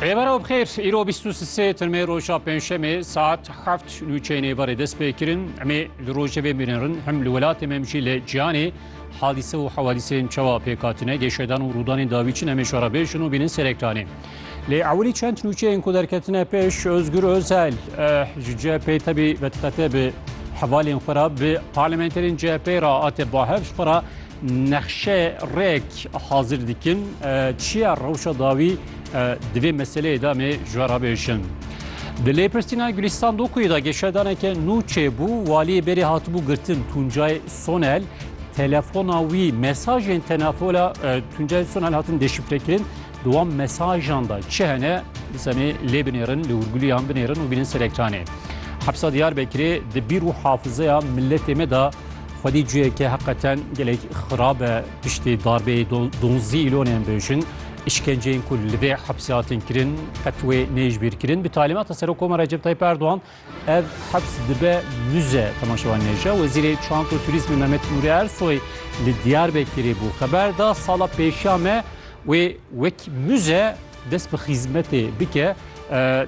Rêbera bixêr îro 23 tirmê roja pênşemê saet heft nûçeyên êvarê dest pê kirin emê li rojê vê mînirin hem li welatê me jî li ciyanê hadîse û hewadîsên çawa pêkatine gêşedan û rûdanên dawî çin emê şara bêjin û bînin serektanê. Lê ewilî çend nûçeyên ku derketine pêş Özgür Özel ji CHP tebî vediqete bi hevalên xwe re bi parlamenterên CHP re ate bahev xwe re Nexşe rek hazir dikin çiya rewşa dawî divê meseleyê de me ji we rabêjin. Di lêpirsîna Gulîstan Dokuyê de geşedaneke nû çêbû waliyê berê hatibû girtin Tuncay Sonel telefona wî mesajên tenafola Tuncay Sonel hatin deşifrekirin Di wan mesajan de çi hene bi semê lê binêrin, li hûrgulîyan binêrin û bînin ser ekranê. Hepsa Diyarbekirê di bîr û hafizeya miletê me de xwedî ciheke heqeten gelek xirab e. Piştî darbeyê donzî îlonên bêjin, îşkenceyên ku li vê hepsê hatin kirin qet wê neyê ji bîr kirin. Bi talîmata Serokkomara Recep Tayyîp Erdogan, Ev heps dibe muze temaşevan nêce. Wezîrê Çand û Turîzmê Mehmet Nûrî Ersoy li Diyarbekirê bû. Xeber da sala pêşiya me wê wek muze dest bi xîzmetê bike.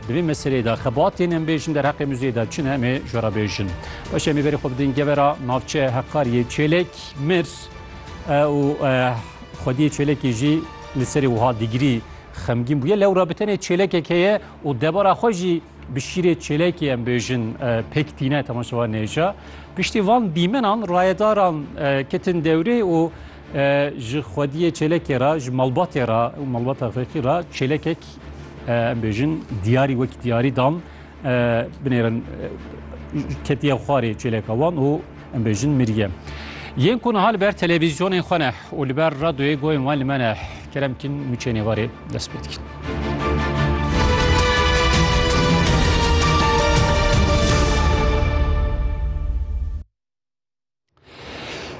Di vê meseleyê de xebatên em bêjin derheqê muzeyê de çi ne em ê ji we re bêjin. Baş em ê berê xwe bidin gevera navçeya Heqariyê Çêlek mir û Xwediyê Çêlekê jî li serê wiha digirî xemgîn bûye. Lewra bi tenê çêlekek heye û debara xwe jî Bi şîrê çêlekê em bêjin pêk tîne temaşevan nêca. Piştî van dîmenan rayedaran ketin dewrê û ji xwediyê çêlekê ra ji malbatê ra û malbata xêqî ra çêlekek em bêjin diyarî wekî diyarî dan binêrin ketiye xwarê çêleka wan û Em bêjin mirîye. Yên ku niha li ber televîzyonên xwe ne û li ber radyoyê goyên wan li me ne kerem kîn mûçê nêvarê dest pê dikin.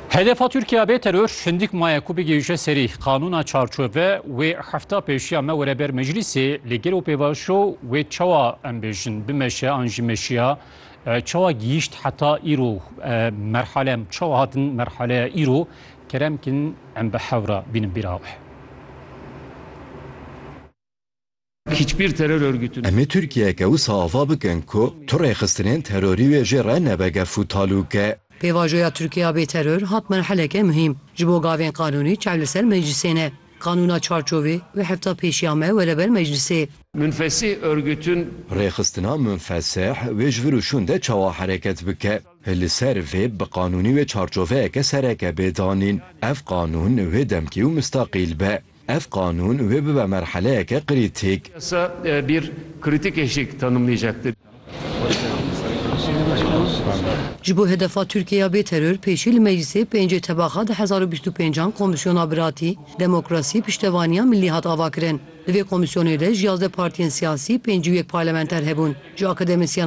Hedefa Türkiye bê terör hindik maye ku bigêje serî qanûna çarçove wê hefta pêşiya me were ber meclisê li gel û pêvajo wê çawa em bêjin bimeşe an jî meşiya Çawa gihîşt heta îro merhale em çawa hatin merhaleya îro kerem kin em bi hewra bînin bîra wê. Hiçbir terör örgütü. Emê Tirkiyeke wisa ava bikin ku tu rêxistinên terorî wê jê re nebe gef û talûke. Pêvajoya Tirkiya bê teror hat merheleke muhîm. Ji bo gavên qanûnî çav li ser meclîsê ne. Qanûna çarçovê, wê hefta pêşiya me were ber meclisê. Münfesih örgütün. Rêxistina Münfesih wê ji vir û şûn de çawa hereket bike? Li ser vê bi qanûnî wê çarçoveyeke sereke bê danîn. Ev qanûn wê demkî û mistaqîl be. Ev qanûn wê bibe merheleyeke krîtîk. Yasa bir kritik eşik tanımlayacaktır. Ji bo hedefa Tirkiye ya bêteror pêşî li Meclîsê pêncê tebaxa du hezar û bîst û pênc an Komîsyona Biratî, Demokrasî, Piştevaniya Milî hat avakirin. Li vê komîsyonê de ji yazdeh partiyên siyasî pêncî û yek parlamenter hebûn. Ji akademisyenan,